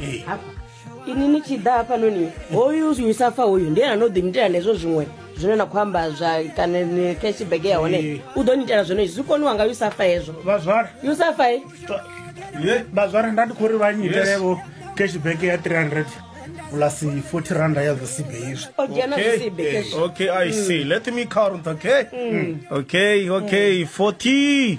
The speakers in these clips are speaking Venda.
Eh. hafha ini ni tshi ḓa hafhanoni hoyu usa fa hoyu ndi ene ano ḓi nitela nezwo zwiṅwe zwine na khou amba zwa kana ni cashback ya hone Eh. u ḓo nitela zwone zwi koniwa nga usa fa hezwo vhazwara usa fa eh? Ye, vhazwara nda ndi khou ri vha nyitelevo cashback ya 300 plus 40 randa ya zwisibe izwi o dzhena Okay, zwisibe eh, cash okay, I see. Let me count, okay? Okay, okay, 40.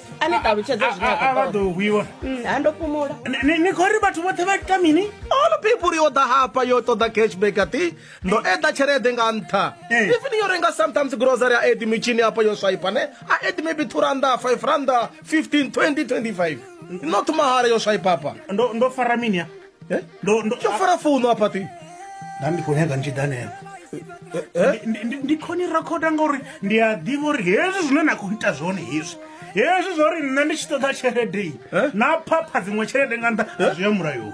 a ni ṱalutshedze zwine a- a- a vha ḓo hwiwa Mm, ha ndo fhumula Ni- ni- ni khou ri vhathu vhoṱhe vha ita mini all people yo ḓa hafha yo ṱoḓa cashback ati ndo eḓa tshelede nga nṱha Eh. even yo renga sometimes grocery a edi mitshini hafha yo swaipa ne a edi maybe two randa five randa 15 20 25 not mahala yo swaipa hafha ndo ndo fara mini ya Eh? ndo ndo tsho fara founu a pati nda ndi khou nyaga ntshidanela eh? ndi khoni rakhoda ngauri ndi a ḓivha uri hezwi zwine na khou ita zwone hezwi hezwi zwa uri nṋe ndi tshi ṱoḓa tshelede eh? na phapha dziṅwe tshelede nga nṱha zwi ya mulayoni